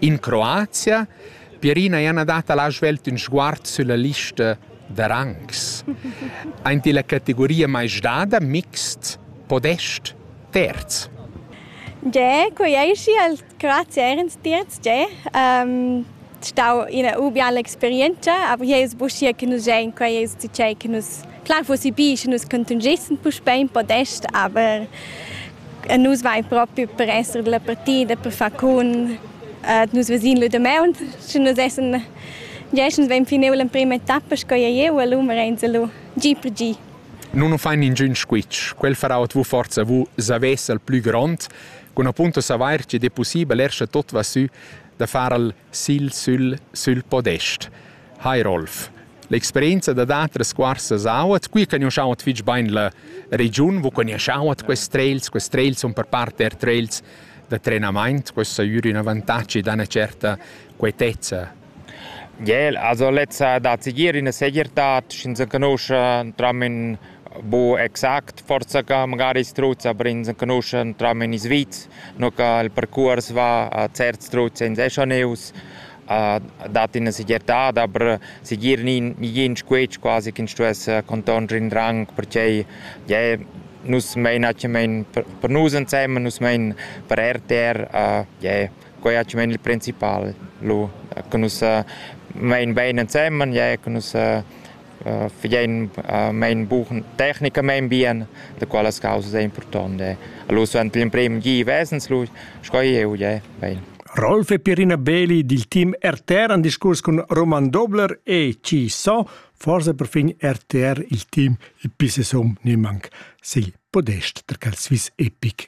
In Croazia. Pierina Jana dat la svelt ün sguard sülla lista da rangs. Aint illa categoria maisdada mixt, podest, terz. Ge, quei ei schi al Croazia erens terz, ge. Um, stau ina ubiala experienza, aber hier ist buschia che nus gein, quei ist tgei che nus Klar fussi bi, sche nus contungessan puspei in podest, aber eh, nus vain propi per esser della partida, per far con eh, nus vesin lu de meun, sche nus essen Jeschens vein fineu l'emprima etappa sco ei jeu, lu merenza lu gi per gi. Non o fain ningün squitsch, quel farà at vu forza vu savess al plü grond, con appunto savair che de possibel escha tot va sü da far al sil sül, sül podest. Hi Rolf. L'experienza dad atras cuorsas auat, qui cagnuschau at fich bain la regiun, vu cagnuschau at quest trails, quest trails sun per part eir trails da trenamaint, questo ha eir ün avantagi da üna certa quietezza. Jel, also lezza da seguir üna segirtad, sch'ins enconuscha tramen bu exact, forza ca magari i struts, aber ins enconuscha tramen in Sviz, no ca il percuors va a certs struts ins escha neus, dat ina segirtad, aber segir nin igin squetsch quasi ch'ins stuess contonscher in rang, perquei yeah, nus mein atgnamein per nus ensemen, nus mein per RTR, uh, yeah, quei atgnamein il principal, lu, che nus uh, mein bein ensemen, yeah, che nus uh, fagein mein bugen tecnicamein bien, da quellas causas è impurtont è. Lu suenter l'emprem gi vesens lu sco jeu je bein. Rolf e Pierina Beli dil team RTR han discurs cun Roman Dobler e Ci So, forse per fin RTR il team il pisesum nimanc sigl podest da cal Swiss Epic.